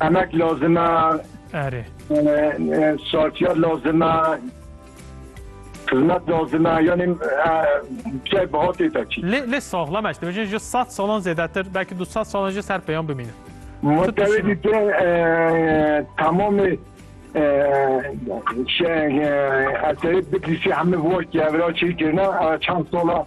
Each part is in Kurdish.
Emek lazim e. Erê. Şartiyat lazim e. Xizmet lazim e. Yanî çay bihatê te çî. Lê lê saxlam eşte bejin ji sed salan zêdetir belkî du sed salan jî ser peyan bimîne. Mutewê dî te tamamê şey eserê bitlîsî hemî vort ki evra çêkirine çend sala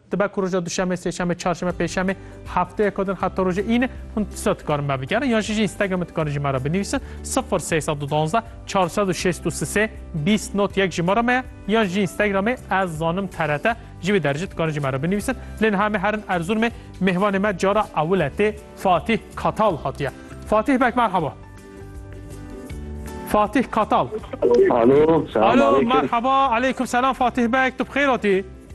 Dibe ku roja duşemê, sêşemê, çarşemê, pêşemê, hefteyeko din heta roja îne hûn tişta dikarin me bigerin yan jî ji Instagramê dikarin ji me re binivîsin sifir sey sed û duwazdeh çar sed û şêst û sisê bîst not yek jimara me ye yan ji Instagramê ez zanim trt ji vê derîjê dikarin ji me re binivîsin lê niha me herin Erzurumê mêvanê me cara ewil e tê Fatîh Katal hatiye. Fatîh bek merhaba. Fatîh Katal. Alo, selam aleyküm. Merhaba, aleyküm selam Fatîh bek, tu bi xêr hatî?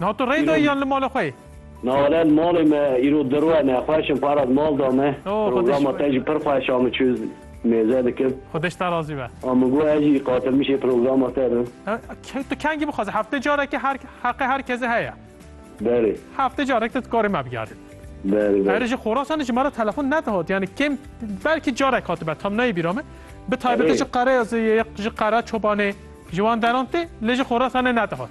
Na tu rê dayî yan li mala xwe yî? Nare li malê me îro dir we ne xweş in para di mal de me. Programa te jî pir xweş a min çû mêze dikim. Xwedeş te razî be. A min got ez jî qatilmişê programa te bim. Tu kengî bixwaze heftê carekê her heqê her kesê heye. Berê. Heftê carek te dikarî me bigerî. Berê berê. Erê ji Xorasanê ji me re telefon nedihat yanî kêm belkî carek hatibe tam neyê bîra min. Bi taybetî ji Qereya Zêyê ji Qera Çobanê ji wan deran tê lê ji Xorasanê nedihat.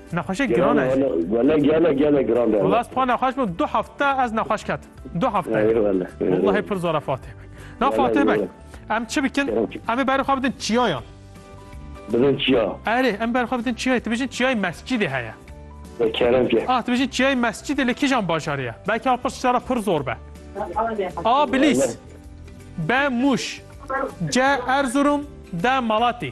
Nexweşê giran e jî. Wele gelek gelek giran be. Wela ez xwe nexweş bûm du hefte ez nexweş ketim. Du hefte. Wellahî pir zora Fatih Beg. Na Fatih Beg em çi bikin? Em ê berê xwe bidin çiyayan. Bidin çiya. Erê em berê xwe bidin çiyayê. Tu bijîn çiyayê mescidê heye. Ve kerem ke. Ah tu bijîn çiyayê mescidê li kîjan bajarê ye? Belkî a pirs şara pir zor be. A bilîs. B mûş. C erzurum. D malatî.